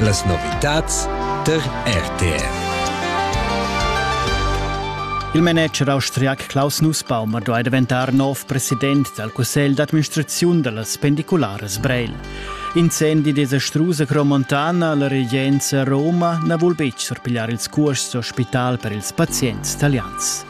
Las novitads der RTR. Il manager austriac Klaus Nussbaumer duai daventar nov president dal cussegl d'administraziun da las pendicularas Breil. Incendi desastrus a Cromontana la regenza Roma na vul betg surpigliar ils cuosts d'ospital per ils pazients talians.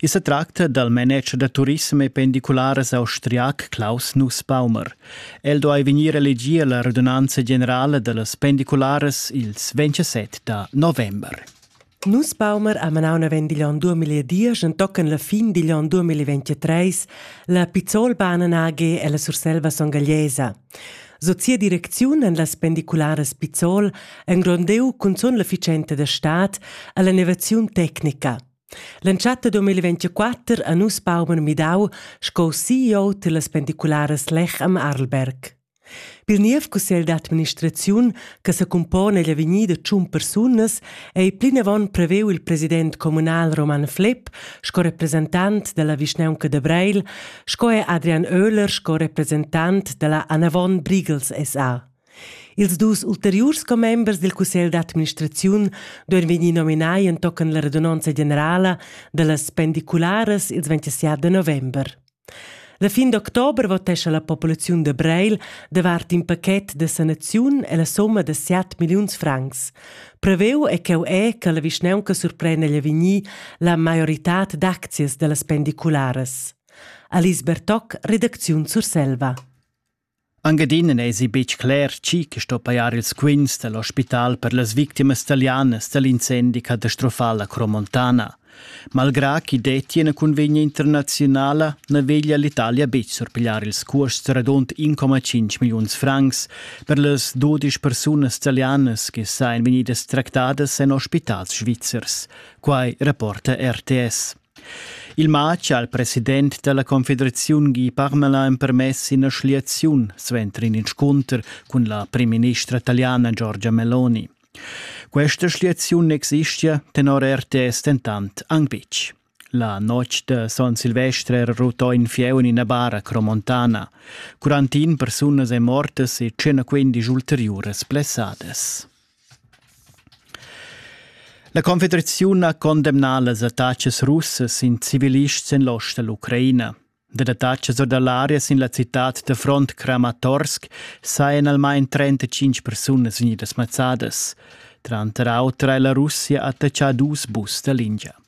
I sa tracta dal manager da turissem e pendicularas austriac Klaus Nussbaumer. El duai vegnir elegì a la radunanza generala da las pendicularas ils 27 da november. Nussbaumer ha manau naven digl onn 2010 entochen la fin digl onn 2023 la Pizzolbahnen AG ella Surselva songagliesa. Sot sia direcziun en las pendicularas Pizzol engrondiu cunzun l'efficienza da stat alla innovaziun tecnica. L'entschatta 2024 ha nus pauper midau sco CEO tillas pendicularas Lech am Arlberg. Pil niev cussegl d'administraziun che secumpone egl avegnir da tschun persunas ei plinavon preveu il president communal Roman Flepp sco representant dalla vischnaunca da Breil, sco er Adrian Oehler sco representant dalla Anavon Briegels SA. Ils dus ulteriurs commembers dil cussegl d'administraziun duein vegnir nominai entochen la radunonza generala dallas pendicularas ils 27 da november. La fin d'october votescha la populaziun de Breil davart in paquet de sanaziun e la somma de 7 milliuns francs. Preveu è cheu è che la vischnaunca surprenda gli vegnir la maioritad d'aczias dallas pendicularas. Alice Bertoc, redacziun Surselva. Anc adina n'èsi betg cler tgi che sto pajar ils quints da l'ospital per las victimas talianas da l'incendi catastrofal a Cromontana. Malgrà ch'i dettia ina cunvegna internaziunala, na veglia l'Italia betg surpigliar ils cuosts radund 1,5 milliuns francs per las dudisch persunas talianas che sajan vegnidas tractadas en ospitals svizzers. Quai rapporta RTS. Il matg ha il president dalla confederaziun Guy Parmelin empermess ina schliaziun suenter in inscunter cun la primministra taliana Giorgia Meloni. Questa schliaziun existia tenor RTS dentant anc betg. La notg de Son Silvestre era rutò in fieu in ina bara cromontana. 41 persunas e mortas e 115 ulteriuras blessadas. La Confederaziun ha condemnà las attachas russas in civilists en l'ost da l'Ucraina. Dad attachas or da l'aria sin la citad da front Kramatorsk sajan almain 35 persunas vegnidas mazzadas. Tranter auter è la Russia attachà dus bus da lingia.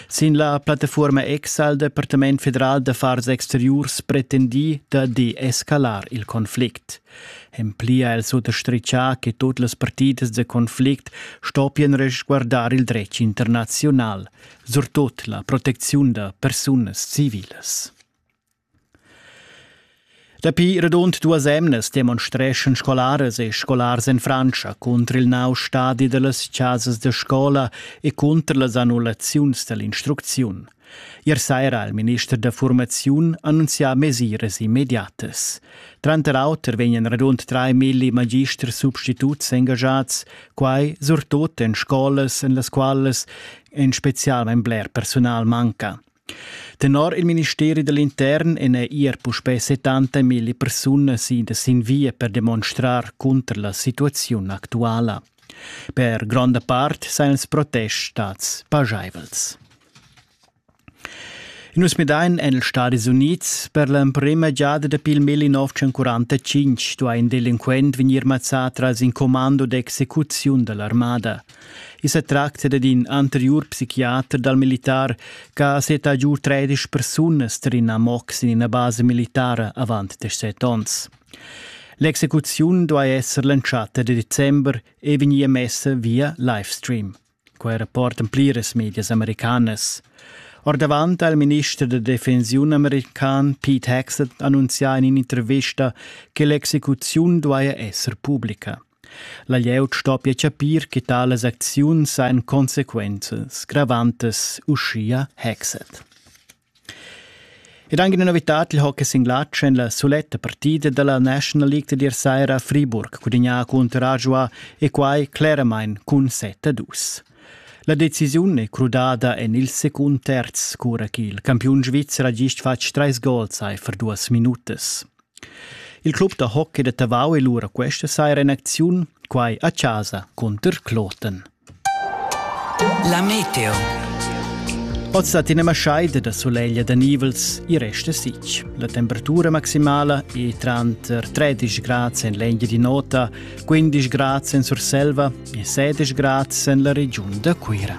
Sin la plattafuorma X ha il Departament federal d'affars exteriurs pretendì da deescalar il conflict. En pli ha el suttostrichà che tut las partidas da conflict stoppian resguardar il dretg internaziunal, surtut la protecziun da persunas civilas. Dapi radund duas emnas demonstreschan scolaras e scolars en Frantscha cunter il nov stadi da las chasas da scola e cunter las annullaziuns da l'instrucziun. Ier saira ha il minister da formaziun annunzià mesiras immediatas. Tranter auter vegnan radund 3.000 magisters substituts engagiads, quai surtut en scolas en las qualas en spezial bler personal manca. Tenor il ministeri da l'intern èn er puspè settanta milli persunas idas sin via per demonstrar cunter la situaziun actuala. Per gronda part sajan els protests stads pajaivels. Nus midain en ils Stadis Unids per l'emprima giada dapi il 1945 duai in delinquent vegnir mazzà tras in commando d'execuziun da l'armada. I sa tracta dad in anteriur psichiater dal militar che ha seta giu tredisch persunas tar in amox in ina basa militara avant desset onns. L'execuziun duai esser l'entschatta de december e vegnir messa via livestream. Quai rapportan pliras medias americanas. Ordavant ha il minister da defensiun american Pete Hegseth annunzià in intervista che l'execuziun duaja esser pubblica. La glieud stoppia chapir che talas acziuns han consequenzas gravantas, uschia Hexet. Ed anche una novità il hockey sin glatsch en la soletta partida della National League di sera a Friburg, cudegna contro Rajua e quai claramente cun 7-2. La decisione è crudada en il secund terz, cura che il campiun svizzer ha gist fatg trais gols per duas minutas. Il club da hockey da Tavau è lura questa saira in acziun, quai a chasa cunter Kloten. La meteo. Oz dat ina maschaida da soleglia da nivels e resta sic. La temperatura maximala è tranter 13 grads en l'Englia di nota, 15 grads en Surselva e 16 grads en la regiun da Cuira.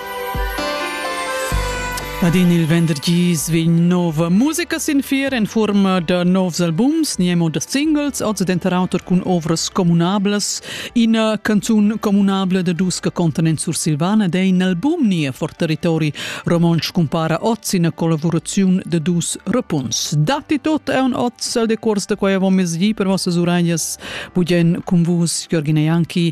Ad in il venderdis vegn nova musica sin fier en forma da novs albums, niemo da singles, oz denter auter cun ovras communablas. Ina canzun communabla da dus che contan en Sursilvana dei in album nia for territori romontsch cumpara oz ina collaboraziun da dus rapuns. Datti tot è un oz al decors da quai avon mezdi per vossas uragnas, budien cun vus Jorgina Janki